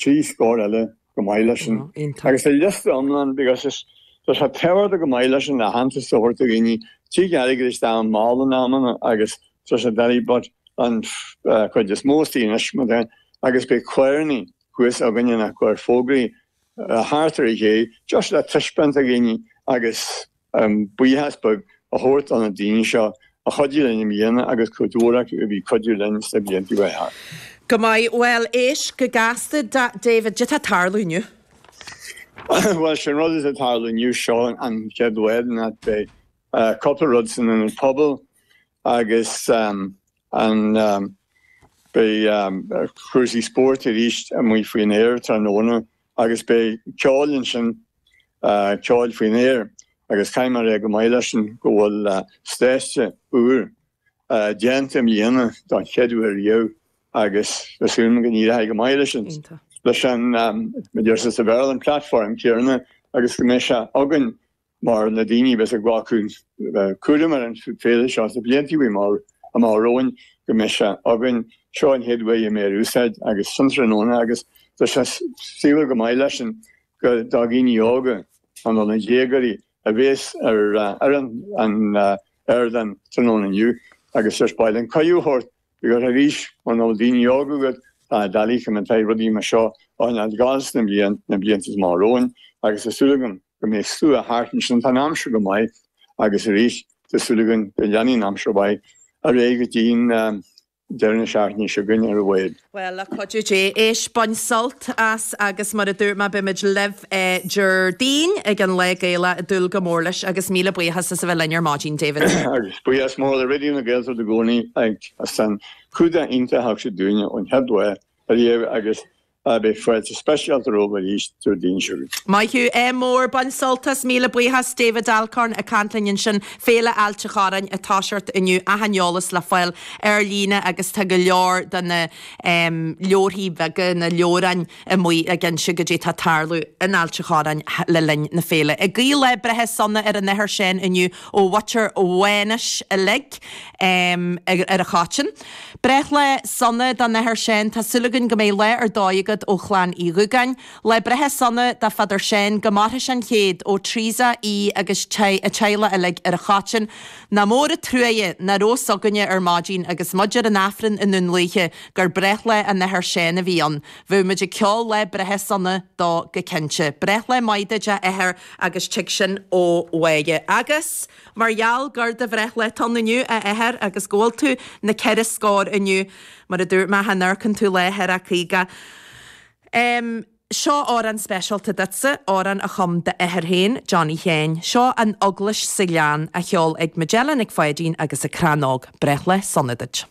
trí scór eile go maith leis sin agus tá liosta iomlán because tá sé tábhachtach go maith leis sin aitheantas a thabhairt do dhaoine trí gheilleagair is dá mball in amanna agus tá sé but an chuid is mó istigh anois mar dá agus beidh cuirfidh muid suas againne ag cur fógraí thart ar an gcé just le taispeáint do dhaoine agus an buíochas beag a thabhairt do na daoine seo a chuidigh linn i mbliana agus go leor acu a bhí ag cuidiú linn sna blianta roimhe thart. Go maith. Bhuel, éist go gasta, David, caidé tá ag tarlú inniu? Bhuel, sé'n rud atá ag tarlú inniu, seo an chéad uair beidh cúpla rud san Ionad Pobail agus beidh cúrsaí spóirt arís amuigh faoin aer tráthnóna. agus beidh ceol ansin ceol faoin aer agus caithfidh mé a rá go maith leis sin go bhfuil stáitse úr déanta i mbliana don chéad uair riamh agus tá súil agam go n-éireoidh go maith leis an leis an, mar a deir sé sa Bhéarla, an platform céarna agus go mbeidh sé againn mar na daoine a bheas ag glacadh cúraim ar an bhféile seo sna blianta amach romhainn, go mbeidh sé againn. Seo an chéad uair a mbeidh sé in úsáid agus san tráthnóna agus tá sé saibhir go maith leis sin gur daoine óga nó na déagóirí a bhéas ar an ardán tráthnóna inniu agus tús áite a thabhairt Arís, mura bhfuil daoine óga agat, tá sé doiligh rudaí mar seo a choinneáilt ag dul sna bliain, na blianta amach romhainn, agus tá súil agam go mbeidh slua thart ansin, tá an aimsir go maith, agus arís, tá súil againn go leanfaidh an aimsir mhaith ar aghaidh go dtí deireadh na seachtaine seo againne ar a laghad. Bhuel, le cuidiú Dé, éist, bain sult as, agus mar a dúirt mé, beimid libh Déardaoin ag an Lá Gaelach, ag dúil go mór leis, agus míle buíochas as a bheith linn ar maidin, David. Buíochas mór le Raidió na Gaeltachta i gcónaí as an cumhdach iontach a thug siad dúinne ón chéad lá ariamh agus beidh fáilte speisialta romhaibh arís Déardaoin seo chugainn. Maith thú féin, bain sult as, míle buíochas David Alcorn ag caint linn ansin, Féile Ailt an Chorráin ag toiseacht inniu, achan eolas le fáil ar líne agus tá go leor de na leabharthaí beaga, na leabhráin, amuigh ag inse caidé tá ag tarlú in Ailt a' Chorráin le linn na féile. Ag guí lá breithe sona ar an Athair Séan inniu ó mhuintir Mhánais uilig ar an Chaiteann. Breithlá sona don Athair Séan. Tá súil againn go mbeidh lá ar dóigh agat ó Chlann Uí Dhugáin. Lá breithe sona do Father Séan. Go maire sé an céad ó Theresa, í agus a teaghlach uilig ar an Chaiteann. Nach mór a' truaighe nach raibh a fhios againne ar maidin agus muid ar an Aifreann i nDún Lúiche. gur breithlá an Athar Seán a bhí ann. Bheadh muid ag ceol lá breithe sona dó go cinnte. Breithlá maith duit, a Athair, agus tig sin ó bhaile. Agus mar gheall gur do bhreithlá atá ann inniu, a Athair, agus go bhfuil tú na ceithre scór inniu, mar a dúirt mé, cha n-amharcann tú lá thar a caoga. Em. seo amhrán speisialta duitse, amhrán a chum d'athair féin, Johnny Sheáin. Seo An Eaglais sa Ghleann, á ceol ag Majella Nic Pháidín agus a Crannóg. Breithlá sona duit.